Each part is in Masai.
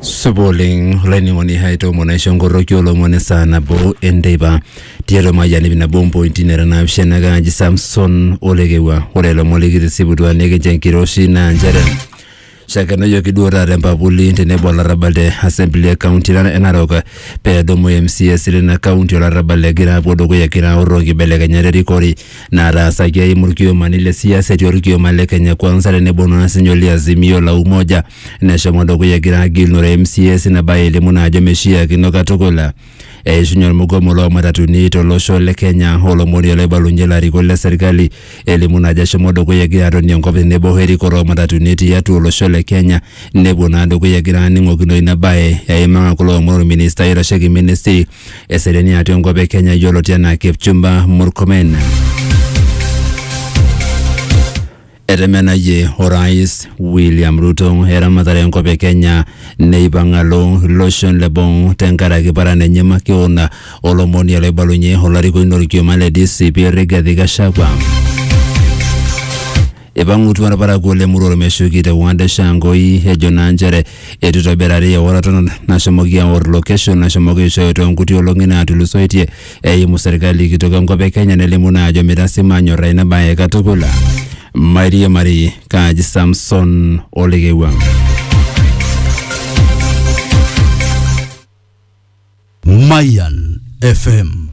supa oleng olainining'oni hai toomon aisho enkorroki olomoni saa nabo enteipa tiatua mayian ip nabo ompointi nara naapishana kaaji samson olekewua ore ilomon likitisiputua nikincho enkiroshi naa nchere shakenoyioki duo taata empapuli tenebo olarrabal te assembly e county e narok peedumu MCAs lina county olarrabal egira apuo dukuya egira aorro nkibelekenyat erikore nataasaki eimu irkiomani le siasa etii orkioma le Kenya Kwanza tenebo naa sinye ole Azimio la Umoja neshomo dukuya egira agilunore MCAs ina bae elimu naa ajo meishiakino katukul eishunye ormugomo loo matatuni tolosho le Kenya olomoni oloibalunye ilarikok le serkali elimu naa ajo eshomo dukuya egira atonie enkop tenebo o erikore oo matatuni tiatua olosho le Kenya nepuo naa dukuya egira aaning'okino ina bae eimaa kulo omon orministai oitasheki ministry Eseriani atua enkop e Kenya yioloti enaa Kipchumba Murkomen. Etemenayie orais William Ruto eramatare enkop e Kenya neipang alo iloshon le boo tenkaraki paran enye makeon olomoni oloibalunye olarikoni lorkioma le DCP Rigathi Gachagua. Eipang'utua ilparakuo le Muror meshuki te Ward Shangoi ejo naa nchere eitu eitobirari eoroto nashomoki aor location nashomoki aishooyo too nkuti olong'i naatulusoitie eimu serkali kitok enkop e Kenya nelimu naa ajo meitasima anyorraa ina bae katukul. Mairiamari kaaji Samson Olekewua. Mayan FM.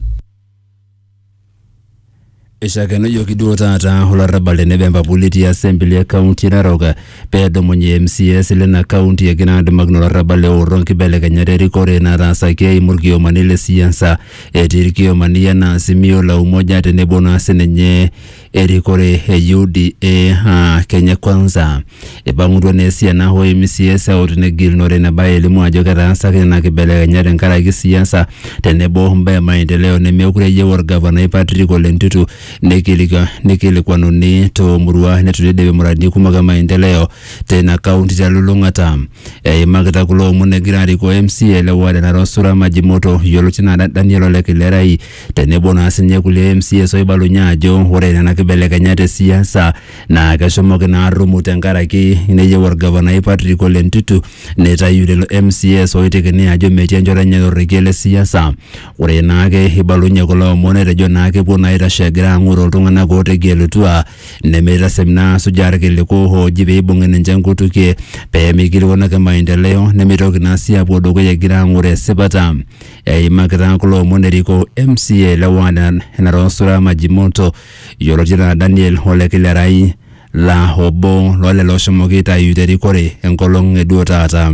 Eishakenujoki duo taata olarrabal tenebo empapuli etii asembli e kaunti Narok pee edumunye MCAs lena kaunti egira adumakino olarrabal eorro nkibelekenyat erikore nataasaki eimu irkiomani le siasa etii irkiomani enaa Azimio la Umoja tenebo naa sininye erikore e UDA aa Kenya Kwanza. Eipang'utua naa esiana o MCAs eut negilunore ina bae elimu ajo ketaasaki nena kibelekenyat tenkaraki siasa tenebo o mbaa e maendeleo nemeekure eyieu olgavanai Patrick Ole Ntutu neikilikuan- neikilikuanuni too murua neitu eidipi muradini kumok e maendeleo teina kaunti telulung'ata. Eimakita kulo omon egira arikoo MCA le ward e Narok Sura Majimoto yioloti anaa Daniel Ole Kilerai tenebo naa sinye kulie MCAs oibalunye ajo ore nena kibelekenyat e siasa naa keshomoki naa arrumu tenkaraki neyieu orgavanai Patrick Ole Ntutu neitayu lelo MCAs oitekini ajo metii enchoto enye torrekie le siasa. Ore naake eibalunye kulo omon etejo naa kepuo naa aitashe egira ang'oroo iltung'anak ootegelutua nemeitasem naa asujaa irkiliku ooji peibung'i ninche nkutukie pee meikilikuanaki maendeleo nemeitoki naa sii apuo dukuya egira ang'oroo esipata. Eimakita kulo omon eriko MCA le ward e Narosura Majimoto yioloti anaa Daniel Ole Kilerai laa obo loo lelo oshomoki aitayu te rikore enkolong e duo taata.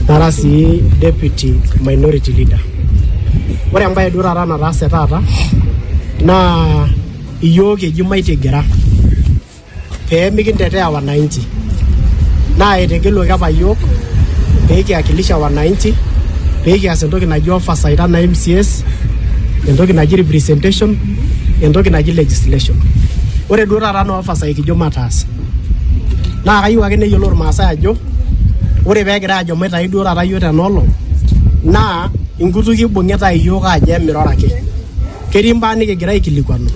nara sii deputy minority leader ore embaye duo taata nataase taata naa iyiook eji maitigera pee mikintetea wananchi naa etegeluaki apa yiok pee kiakilisha wananchi pee kias entoki naji oversight anaa MCS, entoki naji representation, entoki naji legislation. Ore duo taata naa oversight kijo mataas. Naa kayieu ake neyiolou Irmaasai ajo ore pee egira ajo maitayu duo taata yiok tena olong naa inkutukie ibung'ita iyiook aajo emiroro ake. Ketii mbaa nikigira aikilikuanu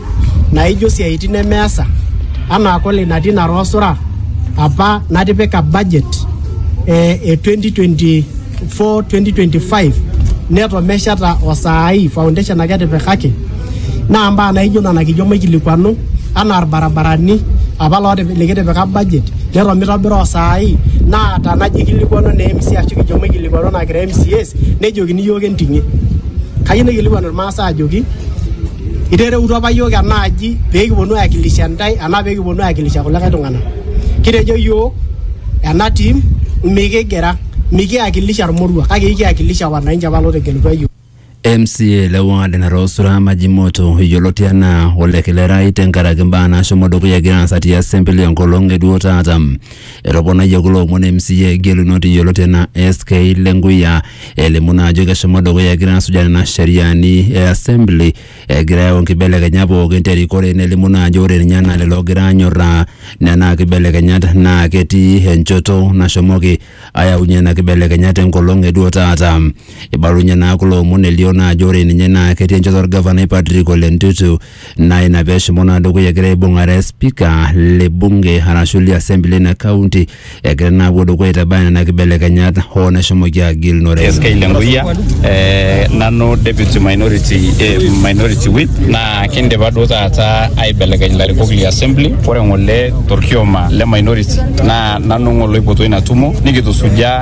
naijo siaitin nemeasa anaa kole ina tina roosura apa natipika budget eh, e 2024-2025 neto mesheta osaai foundation ake etipikaki naa mbaa naijo nena kijo maikilikuanu anaa irbarabarani apa lootip- likitipika budget neto mitobira osaai naa tanajo ikilikuanu ne MCA ashu kijo maikilikuanu naa kira MCAs nejokini iyiook enting'ie kayieu naikilikuanu irmaasai Asa ajoki itereutua apa yiok ena aji pee kiponu aiwakilisha ntae anaa pee kiponu aiwakilisha kulikae tung'anak. Kitejo yiok ena team mikigira mikiwakilisha irmoruak kake ikiwakilisha wananchi apa lootegelutua yiok. MCA le ward natoosura Majimoto yioloti anaa Ole Kilerai tenkaraki mbaa naashomo dukuya egira aasa te assembly enkolong e duo taata. Etoponayie kulo omon MCA gelunot yioloti enaa SK Lenkuya elimu naa ajo keshomo dukuya egira asuja nena sheriani e assembly egira ayau nkibelekenyat pookin terikore nelimu naa ajo ore ninye enaa lelo ogira anyorraa nena kibelekenyat naa ketii enchoto nashomoki ayaunyie nena kibelekenyat enkolong eduo taata. Eibalunyie naa kulo omon elio naa ajo ore ninye naa ketii enchoto orgavanai Patrick Ole Ntutu naa ina pee eshomo naa dukuya egira aibung'are spika le bunge arashu le assembly ina kaunti egira naa apuo dukuya aitabaya nena kibelekenyat hoo neshomoki agilunore. SK Lenguya eh, nanu deputy minority, eh, minority whip naa kindipa duo taata aibelekeny ilarikok le assembly ore ng'ole torkioma le minority naa nanu ng'ole oipotuo ina tumo nikitusujaa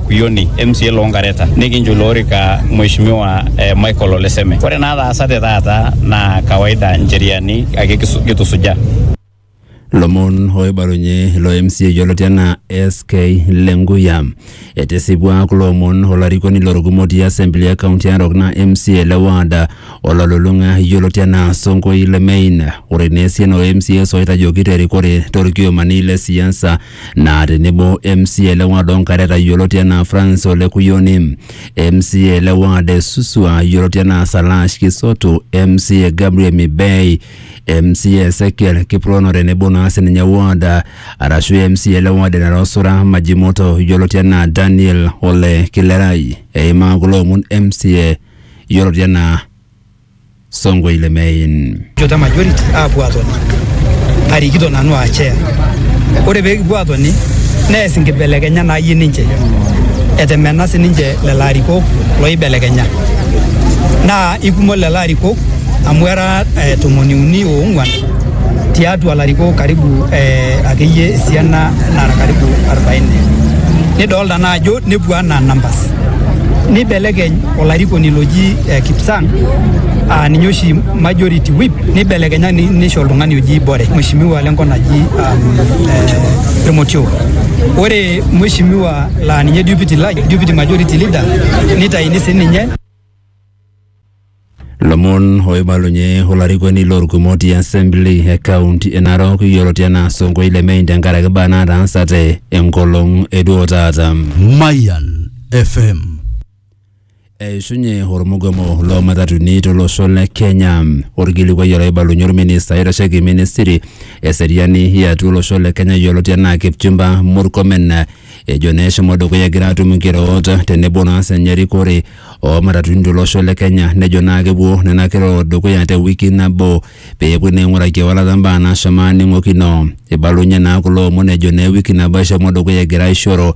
Kuyoni MCA loo Nkareta nikincho ilo orika Mheshimiwa eh, Michael Oleseme. Ore naataasate taata naa kawaida ncheriani ake kisu- kitusujaa. lomon oibalunye ilo MCA yioloti anaa SK Lenguya. Etisipua kulo omon olarikoni lorukumo ti assembly e kaunti e Narok naa MCA le ward ololulung'a yioloti anaa Sonkoi Lemein. Ore naa esiana o MCAs oitajoki terikore torkiomani le siasa naa tenebo MCA le ward Onkareta yioloti enaa Francis Ole Kuyoni, MCA le ward e Suswa yioloti enaa Salash Kisotu, MCA Gabriel Mibei, MCA Ezekiel Kiprono tenebo naa sininye ward arashu MCA le ward e Narosura Majimoto yioloti enaa Daniel Ole Kilerai. Eimaa kulo omon MCA yioloti enaa Songo ile Main. Jota majority aapuo atoni arikito nanu aa chair. Ore pee kipuo atoni nees nkibelekenya naayie ninche etemena sininche lelo arikok loibelekenya naa ikumok lelo arikok amu era eh, tomoni uni oong'uan tiatua larikok karibu eh, akeyie esiana nara karibu 40 nidolta naa ajo nepuo anaa numbers nibelekeny olarikoni loji eh, Kipsang uh, ninye oshi majority whip nibelekenya ni- nisho oltung'ani oji Bore mheshimiwa lenkop naji um, eh, Irmotio ore mheshimiwa laa ninye deputy, la- deputy majority leader nitaini sininye lomon oibalunye olarikoni lorkumot e assembly e kaunti e narok yioloti anaa sonkoi lemein tenkaraki imbaa naataasate enkolong eduo taata Mayan FM Eishunye ormugomo loo matatuni tolosho le Kenya. Orkilikuai olaibalunye orminista oitasheki ministry eseriani yatua olosho le Kenya yioloti enaa Kipchumba Murkomen ejo naa eshomo dukuya egira atum nkiroot tenebo naa senye erikore oo matatuni tolosho le Kenya nejo naa kepuo nena kiroot dukuya te wiki nabo peepuoi naa aing'uraki ewalata mbaa naashomo aning'okino. Eibalunye naa kulo omon ejo naa ewiki nabo eshomo dukuya egira aishoro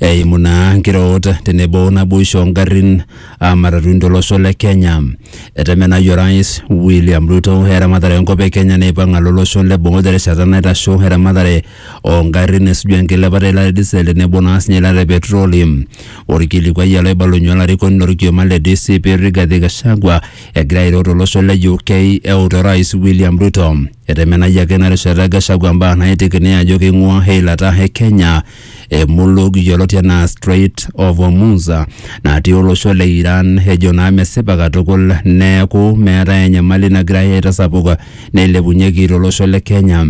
eimu naa nkiroot tenebo naboisho ongarrin aa matatuni tolosho le Kenya. Etemenayie Orais William Ruto eramatare enkop e Kenya neipang alo olosho le boo terishata naitasho eramatare oo ngarrin esuju enkilepata e ilata e diesel tenebo naa siinye eilata e petroli. Olkilikuai ele oibalunye olarikoni lo lkioma le DCP Rigathi Gachagua egira airo to losho le UK eut Orais William Ruto. Etemenayie ake ina rishata Gachagua mbaa naitiki nejo keing'uaa eilata e Kenya Emuluk yioloti anaa Strait of Hormuz natii olosho le Iran ejo naa mesipa katukul neeku meetae enyamali nagirai aitasapuk neilepunyeki to losho le Kenya.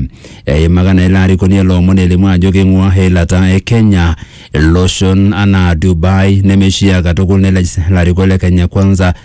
Eimaka naa ilo arikoni ele omoni elimu ajo keing'ua eilata e Kenya iloshon anaa Dubai nemeishia katukul nelej ilarikok le Kenya Kwanza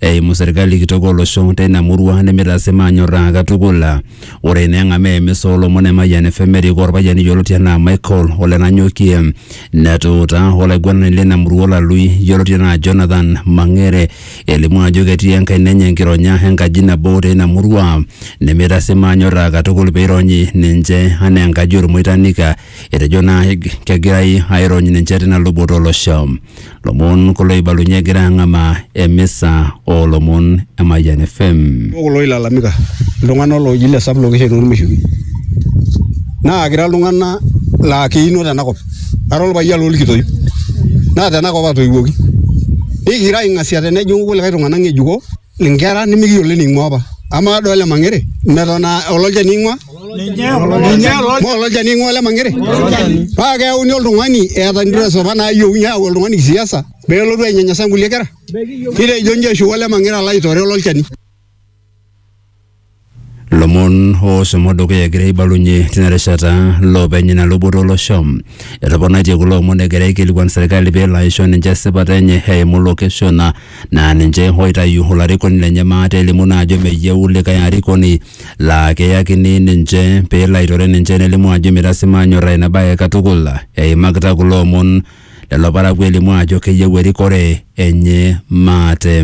eimu serkali kitok olosho teina murua nemeitaasi maanyorraa katukul. Ore ina eng'amaa emisa oolomon e Mayian FM erikoo olpayian yioloti anaa Michael Ole Nanyokie netuutaa olaiguanani leina murua Olalui yioloti anaa Jonathan Mang'ere elimu ajo ketii enkaina enye enkironya enkaji nabo teina murua nemeitaasi maanyorraa katukul pee eironyi ninche anaa enkaji olmoitanik. Etejo naa kegirai airony ninche teina luboto olosho. lomon kulo oibalunye egira ang'amaa emisa oolomon e Mayian FM. Ore kulo oilalamika iltung'anak looji le sub location ormeshubi naa kira iltung'anak laa keino tenakop ara orpayian lorkitoip naa tenakop atoiwuoki nikira aing'asia tenejing'u kulikae tung'anak ng'ejuko. inkera nimikiyiolo ening'ua apa amaa kadol ole mang'ere meton aa ololchani ing'ua maa ololchani ing'ua ole mang'ere paa keyauni oltung'ani eeta interest apa naayieuni ayau oltung'ani kisiasa peelotu ainyanyasa inkulie kera nitejo inji eshuko ole mang'ere alo aitore ololchani. Lomon ooshomo dukuya egira aibalunye tina rishata loopeny ina luboto olosho. Etoponaitie kulo omon egira aikilikuan serkali pelo aisho ninche esipata enye eimu location naa ninche oitayu olarikoni lenye maate elimu naa ajo meyieu likae arikoni laa keyakini ninche pelo aitore ninche nelimu ajo mitasima anyorraa ina bae katukul. Eimakita kulo omon lelo parakuo elimu ajo keyieu erikore enye maate.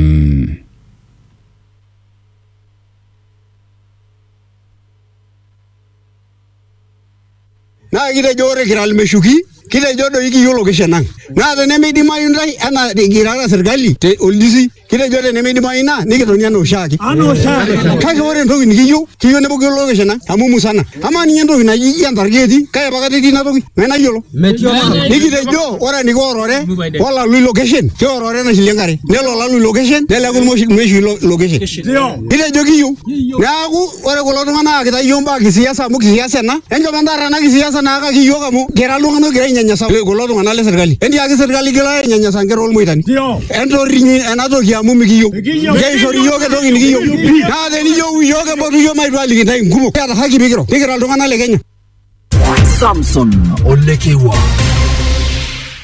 naa kitejo ore kira ilmeshuki kitejo doi kiyiolo kishen ang naa tenemeidimayu ntae anaa kirara serkali te oljisi kitejo tenemeidimayu ina nikitoni anaa oshiake kake ore entoki nikiyieu kiyieu nepuku yiolo kishen ang amu musana Amaa ninye entoki naji iyie entarge etii kake pakata etii ina toki mee nayiolo. Metii olaro. Nikitejo ore eniko orore olalui location keorore enashilie enkare nelo olalui location neleku irmoshi- irmeshui lo- location. Kitejo kiyieu neaku ore kulo tung'anak aakita iyiook mbaa kisiasa amu kisiasa ena enchom entaarra ena kisiasa naakaki iyiook amu kira iltung'anak ogira ainyanyasa kulo tung'anak le serkali. Entiaki serkali igila ainyanyasa nkera olmoitani. entorrinyi ena toki amu mikiyieu keishori iyiook entoki nikiyieu naa teniyieu iyiook empotu iyiook maitu aliki intae nkumok kiata haki pikiro nikira iltung'anak le kenya Samson Olekewa.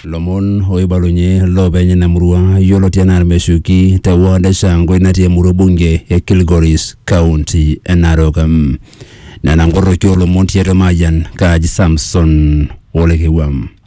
lomon oibalunye loopeny ina murua yioloti anaa irmeshuki te ward e shangwe natii emurua bunge e kilgoris kaunti e narok Mm. nena nkorroki oolomon tiatua mayian kaji samson olekewam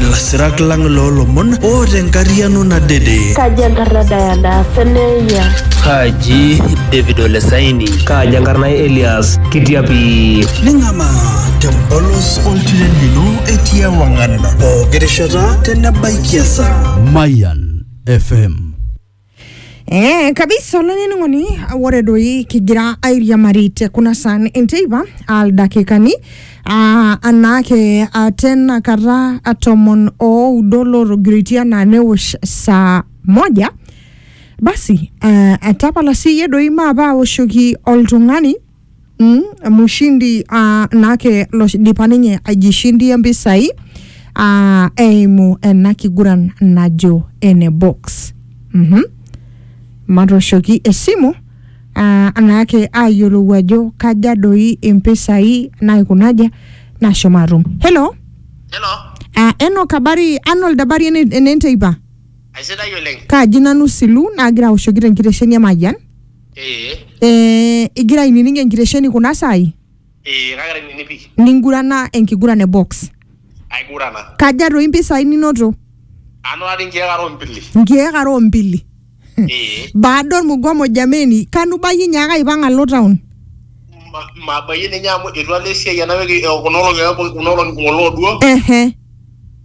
Lasirak lang loo lomon oota enkariano nadede. Kaji enkarna Diana Seneya. Kaji David Olesaini. Kaji enkarna Elias Kitiapi. Ning'amaa tempolos oltiren lino etii ewang'an pooki rishata tenebaikia esaa. Mayan FM Eh, kabisa olainining'oni ore doi kigira airiamari te kuna saan enteipa aldakikani ah, anaake ah, tena kata ah, tomon oudo lotogiriti anaa newosh saa moja basi eh, etapala siyie doi maape awoshoki oltung'ani mm, mushindi uh, nake loidipa ninye aijishindia mpisai uh, eimu ena kiguran najo ene box mm-hmm. matoshoki esimu uh, naake ayiolou ajo kaja doi impisai naikunaja nashomo atum hello Hello, uh, enok habari arnold habari ene- enenteipa aisidai oleng. kaaji nanu silu naagira aoshoki tenkitesheni e mayian Ee, eh, igira ainining enkitesheni kuna saai ee, kagira ainining pii. ningurana enkiguran e box Aigurana. kaja toi mpisai ninoto Anotari nkeek are ombili. nkiek are ombili Ee, baada ormugomo jameni kanu bayie nyaaka aipang alo town ma- mabayie ninye amu etu alo esiai ena wiki eh, kuna olong'i eh, kuna olong'i ng'ole oduo. ehe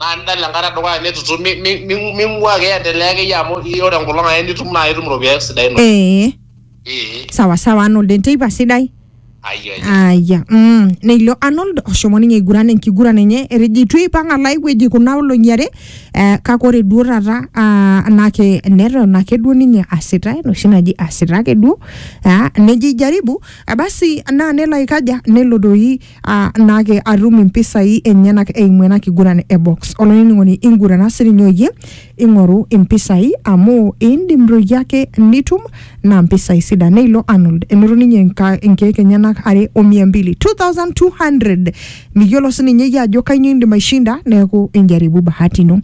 naa nidala enkata edukuya nitutum mi- mi- mi- ming'ua ake endelea akeyie amu i- ore enkolong ake nitum naa itum iropiyiani sidain oleng ee Ee, sawa sawa arnold enteipa sidai ayia ayia aya mm. neilio arnold oshomo ninye aiguran enkiguran enye etejo itu eipang alo ai wueji kuna olong'i are eh, kake ore duo taata ah, anake neton ake duo ninye asita enoshi naji asita ake duo ah, nejo ijaribu eh, basi naa nelo aikaja nelo doi aa naake atum impisai enyenak eimu ena kiguran e box. Olainining'oni ingurana sininye oyie ing'oru impisai amu indim doi ake nitum naa mpisai sidan. Neilo Arnold enoto ninye inka- inkeek enyenak are o mia mbili 2200 miyiolo sininye iyie ajo kainyoo indim aishinda neeku injaribu bahati ino.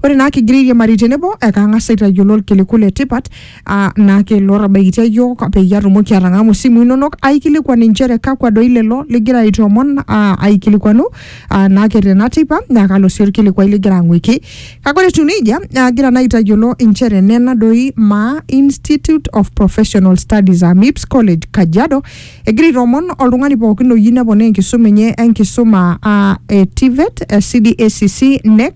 Ore naa kigira airiamari tenebo ekang'as aitayiolo irkiliku le tipat aa naa keilo tabaikitia iyiook peyie atumoki atang'amu isimui inonok aikilikuan inchere kakwa doi lelo ligira aitoomon aa aikilikuanu aa naa ke tena teipa naa kalo sii orkilikuai ligira ang'uiki kake ore etiu nejia naa agira naa aitayiolo inchere nena doi maa Institute of Professional Studies aa MIPS College Kajiado egira aitoomon oltung'ani pookin oyieu neponaa enkisuma enye enkisuma aa e TVET, eh, CDACC, NEC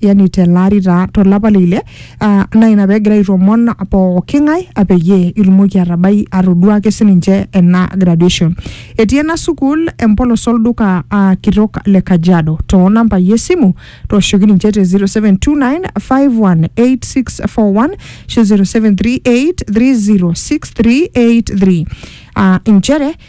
yani telaari taa tolapa le ile ah, naa ina pegira aitomon pooki ng'ae ah, peyie itumoki atabai atodua ake sininche ena graduation etii ena sukuul empolos olduka ah, kitok le kajiado too nambai esimu tooshoki ninche te 0729518641 ashu 0738306383 ah, inchere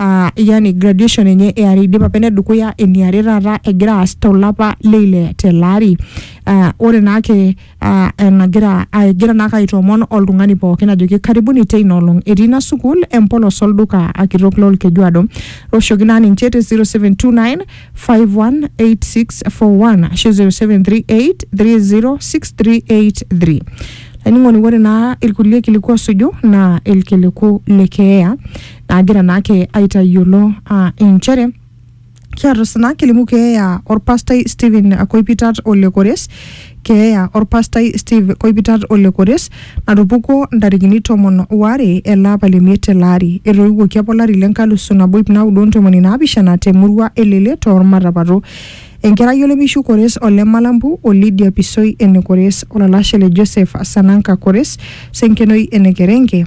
uh, yani graduation enye eare idipa apa enedukuya eniare taata egira aas tolapa leile tele ari uh, ore naake uh, enagira uh, egira naake aitoomon oltung'ani pookin ajoki karibuni teina olong etii ina sukuul empolos olduka akitok lolkejuado oshoki naa ninche te 0729 518641 ashu 0738 30683 laining'oni ore naa ilkulie kiliku osuju naa ilkiliku le keeya naagira naake aitayiolo aa inchere kiata osina kilimu keeya orpastai Stephen Koipitat ole Kores keeya orpastai Steve Koipitat ole Kores natupukuo ntarikini tomon waare ele apa le miet ele ari etoiwuoki apa olari le nkalusu nabo ip naudo ontomoni naapishana te murua elele toormatapato enkerai olemishu Kores ole Malambu o Lydia Pisoi ene Kores olalashe le Joseph Sananka Kores Senkenoi ene Kerenke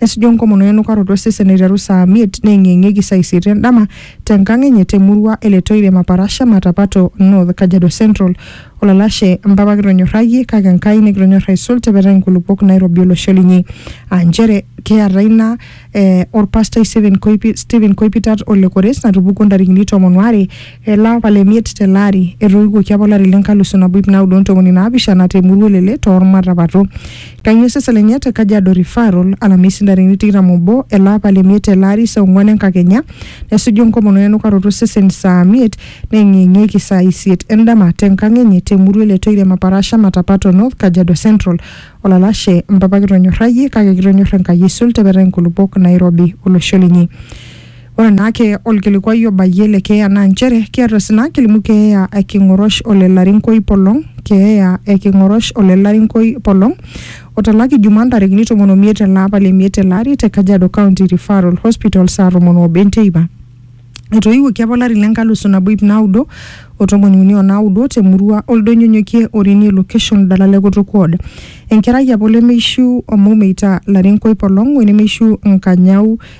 nesuju enkomono enukaroto osesen eiteru saa miet neeng'ieng'ieki saa isiet endama tenkang enye temurua e Letoile Maparasha Matapato North Kajiado Central. Olalashe mpapa kitonyorrayie kake Enkai nikitonyorra aisul tepetai nkulupuok nairobi olosho linyi. Aa nchere kiata ina eh, orpastai Stephen Koipi- Stephen Koipitat ole Kores natupukuo ntarikini tomon waare ele apa le miet tele ari etoiwuoki apa olari le nkalusu nabo ip naudo ontomoni naapishana temurua e Lele toormatapato. Kanyio Seselenia te Kajiado Referral, Alamisi ntarikini tikitam obo ele apa le miet tele ari saa onguan enkakenya nesuju enkomono enukaroto osesen saa miet neyeng'iyeng'ieki saa isiet endama te nkang enye te murua e Letoirem Aparasha Matapato North Kajiado Central. Olalashe, Mpapa kitonyorrayie kake kitonyorr Enkai aisul te petaa inkulupuok nairobi olosho linyi. Ore naake olkilikuai obayie le keeya naa nchere kiata osina kilimu keeya e King'orosh ole Larinkoi Polong, keeya e King'orosh ole Larinkoi Polong otalaki Jumaa ntarikini tomon omiet ele apa le miet tele ari te Kajiado County Referral Hospital saa tomon oobo enteipa. Etoiwuoki apa olari le nkalusu nabo iip naudo o tomoni uni o naudo te murua Oldonyonyokie Orinie Location Dala le Kutuk Ward. Enkerai apa olemeishiu Omoumeitaa Larinkoi Polong wenemeishiu Nkanyau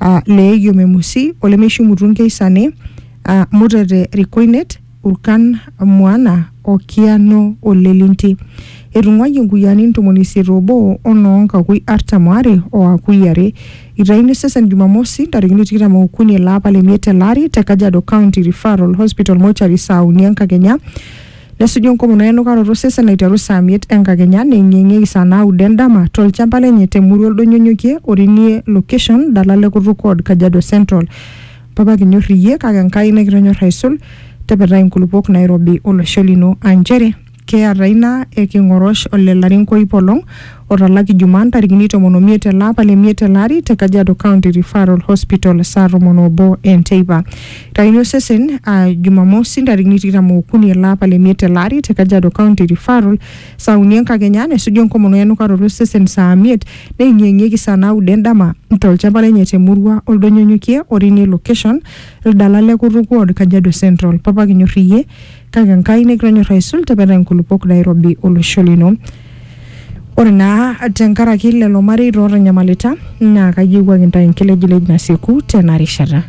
aa leeyio memusi olemeishimutu nkeisane aa mutete rikoinet urkan muana o kiano o lelinti. Etung'uayie nkuyiani ntomoni isiet oobo o noo nkakui artam aare o akui are. Eitayuni osesen Jumamosi ntarikini tikitam ookuni ele apa le miet ele ari te Kajiado County Referral Hospital Mortuary saa uni enkakenya Nesuju enkomono enukaroto osesen aiteru saa miet enkakenya neing'ieng'ieki saa naudo endama tolchamba lenye te murua Oldonyonyokie Orinie location dala le Kutuk Ward Kajiado Central. Papa kinyor iyie kake Enkai nikitonyor aisul tepetai inkulupuok nairobi olosho lino aa nchere keata ina e King'orosh ole Larinko iip olong otalaki Jumaa ntarikini tomon omiet ele apa le miet tele ari te Kajiado County Referral Hospital saa tomon obo enteipa. Itaini osesen aa Jumamosi ntarikini tikitam ookuni ele apa le miet tele ari te Kajiado County Referral saa uni enkakenya nesuju enkomono o enukaroto osesen saa miet neeng'ieng'ieki saa naudo endama tolchamba lenye te murua Oldonyonyokie o Rini location, Ildala le Kutuk ward, Kajiado Central. Papa kinyorr iyie. kake Enkai nikitonyor aisul tepetaa inkulupuok nairobi olosho lino. Ore naa tenkaraki lelo mareita ootanyamalita naa kayiewuaki intae enkilejilej nasieku tena rishata.